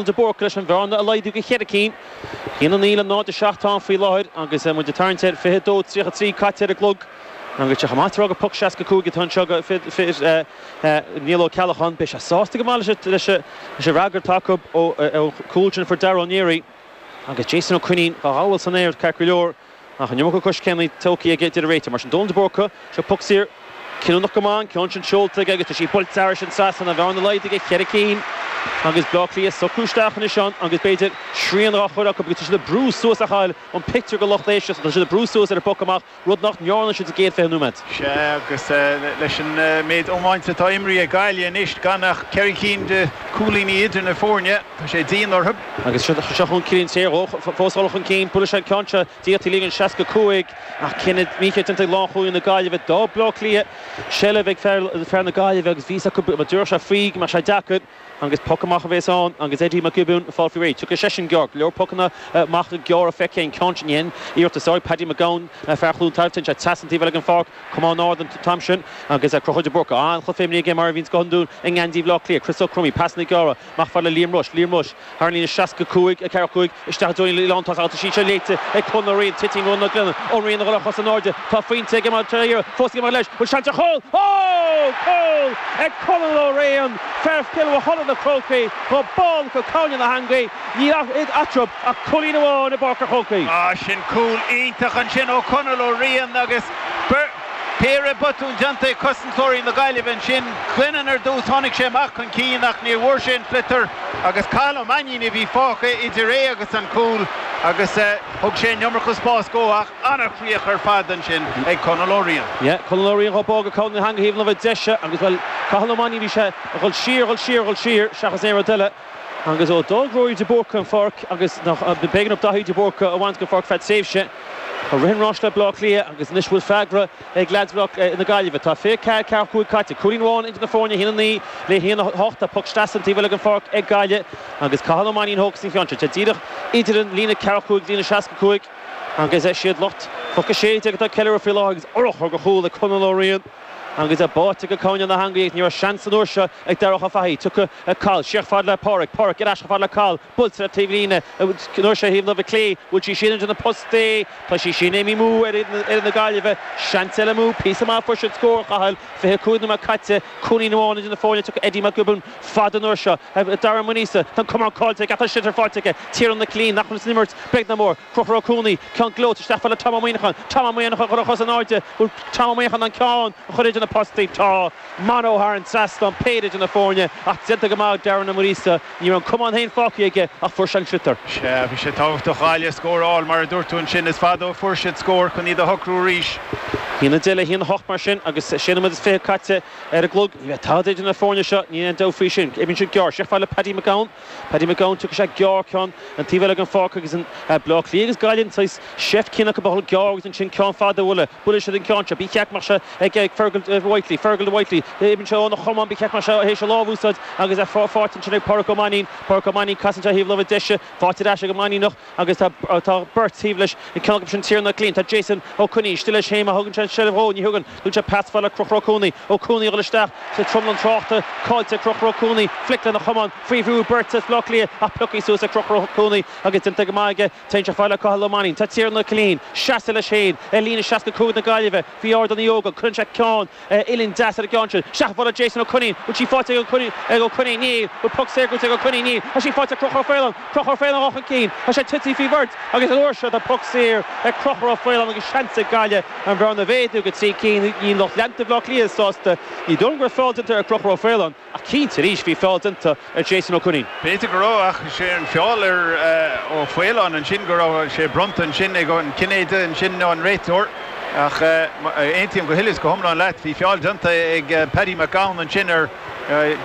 de Búrca leis an bhearna a laghdú go cheithre cinn, haon a naoi le náid a seacht atá ann faoi láthair agus muid ag tarraingt ar fiche a dó tríocha a trí caite ar an gclog agus sé chomh maith tar éag poc seasca a cúig atá anseo go Niall Ó Ceallacháin. Beidh sé sásta go maith leis an fhreagra atá acu ón chúl sin fuair Darragh Ó Néirí agus Jason Ó Coinín dhá ghabháil san aer ceart go leor. Ach an iomarca coiscéimeanna tógthaí aige a deir an réiteoir. Mar sin, Dónal de Búrca, seo poc saor cinniúnach go maith, an ceann sin seolta aige agus tá sí buailte thar an trasnán. An bhearna laghdaithe go cheithre cinn, agus Bleá Cliath ag socrú isteach anois ann agus b'fhéidir srian dhá chur acu agus tá siad ag brú suas a Chathail an pictiúr go lucht éisteachta, tá siad ag brú suas ar an bpoc amach, rud nach ndearna siad sa gcéad fiche nóiméad. Sea, agus leis an méid iomáint atá imrithe ag Gaillimh anois, gan ach ceithre chinn de cúilíní idir na foirne, Tá sé dian orthu. Agus seo chun cinn an tsaoil dhó, fós dhul chun cinn. Buailfidh sé an ceann seo d'Fhiataí líne 65 ach cinneadh mícheart déanta ag lánchúlaí na Gaillimhe. D'fhág Bleá Cliath seilbh ag fear na Gaillimhe agus bhí fhios acu go dtabharfadh sé faoi, go mbeadh sé deacair agus poc amach a bhéas ann agus Eddie Mac Giobúin ag fáil faoi réidh. Tiocfaidh seisean gearr, go leor pocanna amach gearra feicthe aige an ceann sin a dhein iarratas air. Paddy Mac Gabhann, fear Chluain Tarbh, ag tíocht trasna an taobh eile den pháirc, camán ard an t-am sin agus Conchúr de Búrca an-chluiche aige mar a bhíonn go hiondúil i ngeansaí Bhleá Cliath. Chris O'Crummy, pasanna gearra. Amach fad le Liam Rushe, Liam Rushe, thar an líne, 65, 4, 5, isteach i dtreo an líne lántosach agus tá sí seo léite ag Conal Ó Riain, titeann Ronan Glennon, Ó Riain a dhul ar chosa in airde, tá fós ag imeacht trína iarraidh, Fós ag imeacht leis, bhuel seans ar chúl! Ó! Cúl ag Conal Ó Riain, fear Chill Mhochuda na Crócaigh, dhá bualadh go cúinne na heangaí, níl eatarthu ach cúilín amháin i bPáirc an Chrócaigh. Sin cúl iontach ansin ó Conal Ó Riain agus. Péire botún déanta ag cosantóirí na Gaillimhe ansin. Glennon ar dtús, tháinig sé amach chun cinn ach níor bhfuair sé an sliotar agus Cathal Ó Mainnín a bhí fágtha idir é agus an cúl agus thug sé an iomarca spáis dhó ach an-chríoch ar fad ansin ag Conal Ó Riain. Yeah, Conal Ó Riain á bá go cúinne na heangaí thaobh na láimhe deise agus, bhuel, Cathal Ó Mainnín, bhí sé ag dhul siar, dhul siar, dhul siar seachas aon rud eile agus ó d'fhág Ruairí de Búrca an pháirc agus b'éigean do Dhaithí de Búrca a bhaint den pháirc feadh tréimhse, Tá rith an ráis le Bleá Cliath agus anois bhfuil freagra ag leads na Gaillimhe. Tá 24 45 caite, cúilín amháin idir na foirne, 1-9 le 1-8. Tá poc sleasa an taobh eile den pháirc ag Gaillimh agus Cathal Ó Mainnín a thógfas an ceann seo. Tá díreach idir an líne 45 is líne 65 agus is iad lucht Chnoc 16 atá ag ceiliúradh faoi láthair agus urchar go chúl ag Conal Ó Riain agus báite go cúinne na heangaí. Ní raibh seans an uair seo ag Darach Ó Fathaigh. Tiocfaidh Cathal síos fad le Pádraic. Pádraic ar ais chomh fad le Cathal. Buailte ar an taobhlíne an uair seo thaobh na láimhe clé, bhfuil sí sin idir na postaí, tá sí sin, imithe amú ar fhoireann na Gaillimhe, seans eile amú, píosa maith ó fuair siad scór, Chathail, 25 nóiméad caite, cúilín amháin idir na foirne tiocfaidh Eddie Mac Giobúin fada an uair seo, Darren Ó Muiríosa, tá an camán caillte aige ach tá sliotar faighte aige, Tiarnán Ó Cillín, nach bhfuil san imirt beag ná mór. Conchúr Ó Cuanaigh ceann gleoite isteach fad le Tom Ó Muineacháin. Tom Ó Muineacháin ag cur a chos in airde. Bhfuil Tom Ó Muineacháin in ann ceann a chur idir na postaí. Tá Man Ó thar an trasnán, péire idir na foirne ach déanta go maith ag Darren Ó Muiríosa. Ní raibh an camán féin fágtha aige ach fuair sé an sliotar. Sea, bhí sé tábhachtach do Ghaillimh scór a fháil, mar a dúirt tú ansin. Is fada ó fuair siad scór chun iad a shocrú arís. 1-10 le 1-8 mar sin agus sé nóiméad is fiche caite ar an gclog. Ní bheidh tada idir na foirne seo, níl aon dabht faoi sin. Imríonn siad gearr isteach fad le Paddy Mac Gabhann. Paddy Mac Gabhann, tugann sé gearr ceann an taobh eile den pháirc agus ag Bleá Cliath agus Gaillimh saghas seift chéanna acu a dhul gearr agus ansin ceann fada a bhualadh. Buailfidh siad an ceann seo. Ba cheart go mbeadh sé ag Fergal Whitely. Fergal do Whitely. Imíonn sé óna chamán. Ba cheart go mbeadh sé théis a lámh a úsáid agus faighte ansin ag Pádraic Ó Mainnín. Pádraic Ó Mainnín casann sé ar thaobh na láimhe deise. Faighte ar ais ag an Mainníneach. agus tá beirt taobh leis, an ceann acu sin Tiernan Killeen. Tá Jason Ó Coinín istigh leis féin, má thugann sé an seilbh dhó, ní thugann, tugann sé pas fada le Conchúr Ó Cuanaigh, Ó Cuanaigh a dhul isteach sa tranglam tráchta, caillte ag Conchúr Ó Cuanaigh, flic lena chamán, faoi bhrú, beirt as Bleá Cliath ach pioctha suas ag Conchúr Ó Cuanaigh agus déanta go maith aige, téann sé fada le Cathal Ó Mainnín. Tá Tiernan Killeen seasta leis féin ar líne 65 na Gaillimhe, faoi Ardán Uí Ógáin, cuireann sé ceann, uillinn deas ar an gceann sin. Isteach ar mhullach Jason Ó Coinín, bhfuil sí faighte ag Ó Coinín? Níl. Bhfuil puc saor gnóite ag Ó Coinín? Níl. Tá sí faighte ag Conchúr Ó Faoláin. Conchúr Ó Faoláin ag dul chun cinn. Tá sé tití faoi bheirt agus an uair seo tá puc saor ag Conchúr Ó Faoláin agus seans ag Gaillimh an bhearna a mhéadú go trí cinn. Níl lucht leanta Bhaile Átha Cliath sásta. Ní dóigh go raibh feall déanta ar Chonchúr Ó Faoláin. Ach cinnte, arís, bhí feall déanta ar Jason Ó Coinín. B'fhéidir go raibh, ach is é an feall ar Ó Faoláin ansin go raibh sé bronnta ansin ag an Cinnéide ansin nó an réiteoir. Ach aontaím go huile is go hiomlán leat, bhí feall déanta ag Paddy Mac Gabhann ansin ar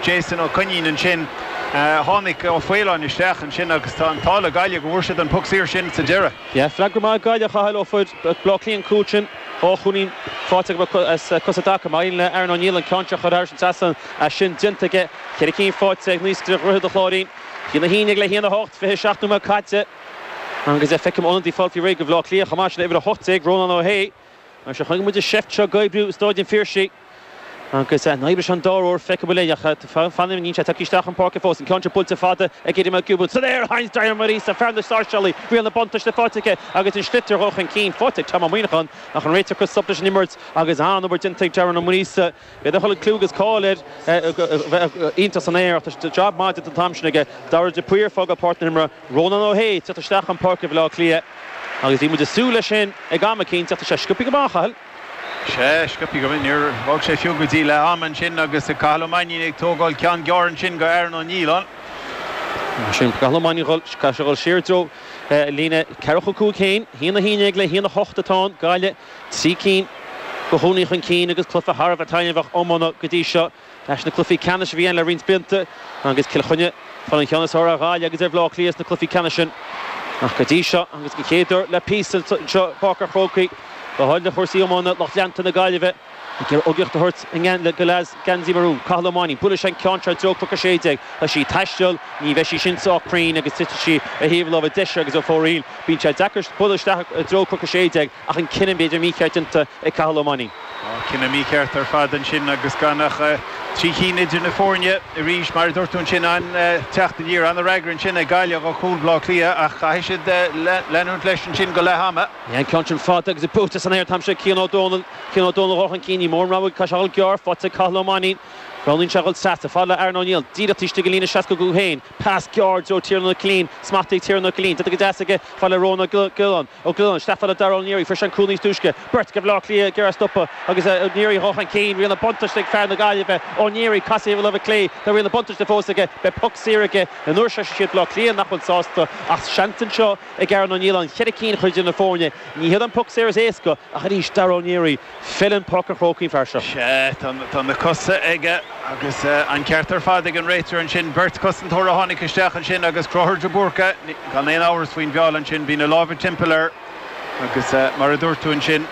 Jason Ó Coinín ansin. Tháinig Ó Faoláin isteach ansin agus tá an t-ádh le Gaillimh go bhfuair siad an poc saor sin sa deireadh. Yeah, freagra maith ag Gaillimh, a Chathail, ó fuair Bleá Cliath an cúl sin. Ó Coinín, faighte go mic is cosa agat. Ba mhian le Aaron Ó Nialláin an ceann seo a chur thar an trasnán. Is sin déanta aige, ceithre cinn faighte ag Naoscaire Dhroichead an Chláirín. A haon a haon déag le haon a hocht, 27 nóiméad caite. Agus feicim ionadaí ag fáil faoi réir do Bhleá Cliath chomh maith sin, uimhir 18, Rónán Ó hAodha. Anois chonaic muid an seift seo ag oibriú i Stáid an Phiarsaigh. Agus an oibreoidh sé an dara huair, feicfimid, ach fanaim an mbíonn sé ag teacht isteach chun páirce fós. An ceann seo buailte fada ag Eddie Mac Giobúin. San aer ansin, Darren Ó Muiríosa, fear na Sáirséalach, riail an bhuntáiste faighte aige agus an sliotar ag dhul chun cinn faighte ag Tom Ó Muineacháin. Ach an réiteoir ag cur stop leis an imirt agus an-obair déanta ag Darren Ó Muiríosa. B'fhéidir nach bhfuil an clú agus cáil air a bheith iontach san aer, ach tá jab maith déanta an t-am sin aige. Dara de Paor ag fágáil páirc na himeartha. Rónán Ó hAodha ag teacht isteach chun páirce Bhaile Átha Cliath agus bhí muid ag súil leis sin ag am eicínt, ach tá sé sciobtha go maith, a Chathail. Sea, sciobtha go maith. Níor thóg sé fiú go dtí leath ama ansin agus ag Cathal Ó Mainnín ag tógáil ceann gearr ansin go Aaron Ó Nialláin. Mar sin, Cathal Ó Mainnín dhul, caithfidh sé dhul siar i dtreo líne ceathracha cúig féin. A haon a haon déag le haon a hocht atá ann, Gaillimh trí cinn i gcónaí chun cinn agus cluiche thar a bheith taitneamhach iomána go dtí seo. Leis na cluichí ceannais a bhí ann le roinnt blianta agus Cill Chainnigh ag fáil an cheann is fearr ar Ghaillimh agus ar Bhaile Átha Cliath sna cluichí ceannais sin ach go dtí seo agus den chéad uair le píosa anseo i bPáirc an Chrócaigh maidir le cúrsaí iomána lucht leanta na Gaillimhe a gcuid tacaíocht a thabhairt do lucht geansaí marún. Cathal Ó Mainnín, buaileann sé an ceann seo i dtreo Cnoc a sé déag. Tá sí ag taisteal, ní bheidh sí sin sách cruinn agus titfidh sí ar thaobh na láimhe deise agus ar fóraoil bíonn sé deacair bualadh isteach i dtreo Cnoc a sé déag. ach an cinneadh b'fhéidir mícheart déanta ag Cathal Ó Mainnín. Tá cinneadh mícheart ar fad ansin agus gan ach trí cinn idir na foirne arís. Mar a dúirt tú ansin, an-teacht aniar, an-fhreagra ansin ag Gaillimh do chúl Bhleá Cliath ach caithfidh siad leanúint leis ansin go leath ama. Bhí an ceann sin fada agus é buaite san aer an t-am seo ag Cian Ó Dónaill. Cian Ó Dónaill a dhul chun cinn. Níl mórán rogha aige ach a dhul gearr. Faighte ag Cathal Ó Mainnín. Roghnaíonn sé a dhul trasna. Fada le Aaron Ó Nialláin. Díreach istigh den líne seasca cúig féin. Pas gearr i dtreo Tiernan Ó Cillín. Smacht ag Tiernan Ó Cillín. Déanta go deas aige. Fada le Rónán Ó Giolláin. Ó Giolláin, isteach fada le Darragh O'Neary, fuair sé an cúl níos túisce, beirt de Bhaile Átha Cliath ag iarraidh é a stopadh agus O'Neary a dhul chun cinn. Riail na buntáiste ag fear na Gaillimhe, O'Neary, casadh ar thaobh na láimhe clé. Tá riail na buntáiste fós aige. Beidh poc saor aige an uair seo. Siad Baile Átha Cliath nach bhfuil sásta ach seans anseo ag Aaron Ó Nialláin cheithre cinn a chur idir na foirne. Ní hé an poc saor is éasca ach arís Darragh O'Neary. Feileann Páirc an Chrócaigh don fhear seo. Sea, tá na cosa aige agus an ceart ar fad ag an réiteoir ansin. Beirt chosantóir a tháinig isteach ansin agus Conchúr de Búrca, gan aon amhras faoin bhfeall ansin. Bhí na lámha timpeall air agus mar a dúirt tú ansin,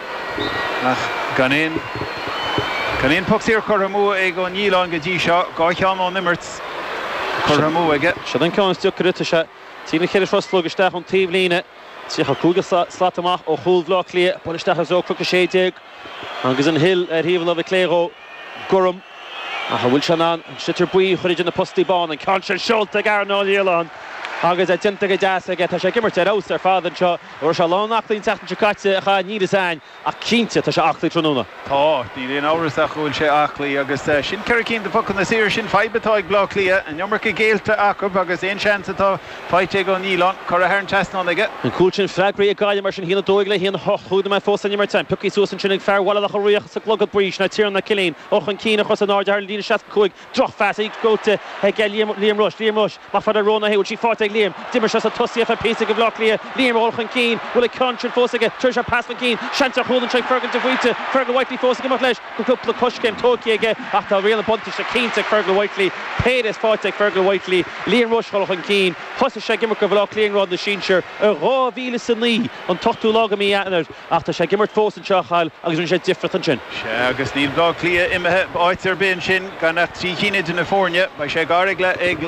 ach gan aon, gan aon phoc saor curtha amú ag Ó Nialláin go dtí seo. Dhá cheann ón imirt curtha amú aige. Sin an ceann is deacra. Tá sé trí nó cheithre thruslóg isteach ón taobhlíne. 35 slat amach ó chúl Bhaile Átha Cliath, bualadh isteach i dtreo Cnoc 16 agus an Hill ar thaobh na láimhe clé dhó. Gorm, ach an bhfuil sé in ann an sliotar buí a chur idir na postaí bána? An ceann sin seolta ag Aaron Ó Nialláin agus é déanta go deas aige. Tá sé ag imirt ar fheabhas ar fad anseo. Ní raibh sé lán aclaí an tseachtain seo caite a chaith Neilly Sainn. Ach cinnte, tá sé aclaí tráthnóna. Tá. Níl aon amhras ach go bhfuil sé aclaí. Agus sin ceithre cinn de phocanna saora. Sin fadhb atá ag Bleá Cliath. An iomarca géillte acu agus aon seans atá faighte ag Ó Nialláin, curtha thar an trasnán aige. An cúl sin freagartha ag Gaillimh mar sin. 1-12 le 1-8, cúig nóiméad fós san imirt. Pioctha suas ansin ag fear Mhaile Locha Riach sa gclogad buí, ná Tiernan Ó Cillín. Dhul chun cinn, ar cosa in airde thar an líne 65. Drochphas, í gnóite ag Liam. Liam Rushe, Liam Rushe, amach fada Rónán Hayes, bhfuil sí faighte ag Liam? D'imir sé sa tosaíocht le píosa go Bhleá Cliath. Liam a dhul chun cinn, bhfuil an ceann sin fós aige? Tabharfaidh sé pas chun cinn. Seans ar chúl anseo ag Fergal de Faoite, Fergal Whitely fós ag imeacht leis. Cúpla coiscéim tóigthe aige ach tá riail na buntáiste cinnte ag Fergal Whitely. Péire is faighte ag Fergal Whitely. Liam Rushe dhul chun cinn. Thosaigh sé ag imirt go Bhleá Cliath i ngrád na sinsear i 2009, an t-ochtú lá go mí Eanáir. Ach tá sé ag imirt fós anseo, a Chathail, agus rinne sé difriocht ansin. Sea, agus níl Bleá Cliath imithe áit ar bith ansin gan ach trí cinn idir na foirne. Beidh sé gar ag ag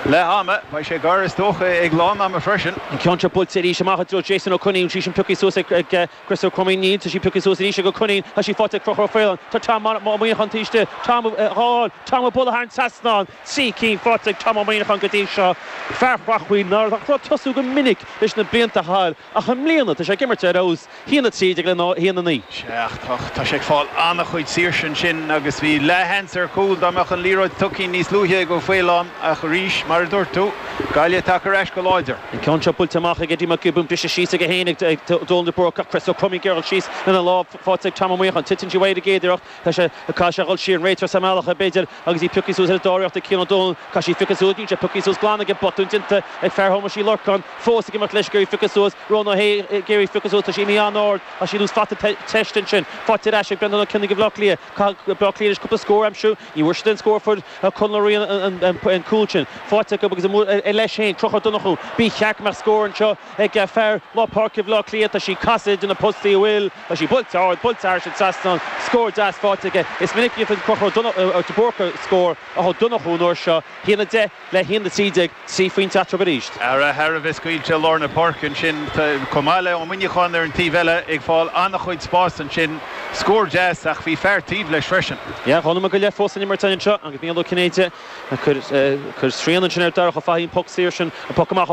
leath ama. Beidh sé gar, is dócha, ag lán ama freisin. An ceann seo buailte arís amach i dtreo Jason Ó Coinín. Bhí sí pioctha suas ag ag Chris Ó Cromaí. Níl, tá sí pioctha suas arís ag Ó Coinín. Tá sí faighte ag Conchúr Ó Faoláin. Tá Tom Ó Muineacháin taobh istigh de. Tom dhá fáil. Tom á bualadh thar an trasnán, trí cinn faighte ag Tom Ó Muineacháin go dtí seo. Fear Chreachmhaoil nach raibh ag tosú go minic leis na blianta, a Chathail. Ach i mbliana, tá sé ag imirt ar fheabhas, hAon a Trí Déag le hAon a Naoi. Sea, ach tá sé ag fáil an-chuid saoirse ansin agus bhí leathsheans ar chúl dá mbeadh an liathróid tugtha níos luaithe ag Ó Faoláin ach arís, mar a dúirt tú, Gaillimh tagtha ar ais go láidir. An ceann seo buailte amach ag Eddie Mac Giobúin, briste síos aige féin ag Dónal de Búrca ach Chris Ó Cromaí, gearradh síos lena lámh, faighte ag Tom Ó Muineacháin. Titeann sí uaidh ar an gcéad iarracht Tá sé, caithfidh sé dhul siar, an réiteoir sa mbealach b'fhéidir agus í pioctha suas ar an dara hiarracht ag Cian Ó Dónaill. Caithfidh sé í a phiocadh suas, níl sé pioctha suas glan aige, botún déanta ag fear Thomáis Uí Lorcáin, fós ag imeacht leis ag iarraidh í a phiocadh suas, Rónán Ó hAodha, ag iarraidh í a phiocadh suas, tá sí imithe an-ard, tá sí anuas, faighte te, teist ansin, faighte ar ais ag Breandán Ó Cionnaith do Bhleá Cliath, caithfidh Bleá Cliath anois cúpla scór a aimsiú, ní bhfuair siad aon scór ó fuair Conal Ó Riain an cúl sin, faighte acu agus amuigh leis féin, Conchúr Ó Donnchú, ba cheart go mbeadh scór anseo, ag fear lár páirce Bhaile Átha Cliath, tá sé ag casadh i dtreo na postaí a bhfuil, tá sí buailte ard, buailte thar an trasnán, scór deas faighte aige. Is minic a dhéanfadh Conchúr de Búrca scór ach Ó Donnchú an uair seo, hAon a Deich le hAon a Trí Déag, trí phointe eatarthu arís. Earra thar a bheith scaoilte i lár na páirce ansin, chomh maith le Ó Muineacháin ar an taobh eile ag fáil an-chuid spáis ansin. Scór deas ach bhí fear taobh leis freisin. Yeah, Chonamara go leith fós san imirt anseo agus Micheál Ó Cinnéide ag cur srian ansin ar Darach Ó Fathaigh an poc saor sin, an poc amach ó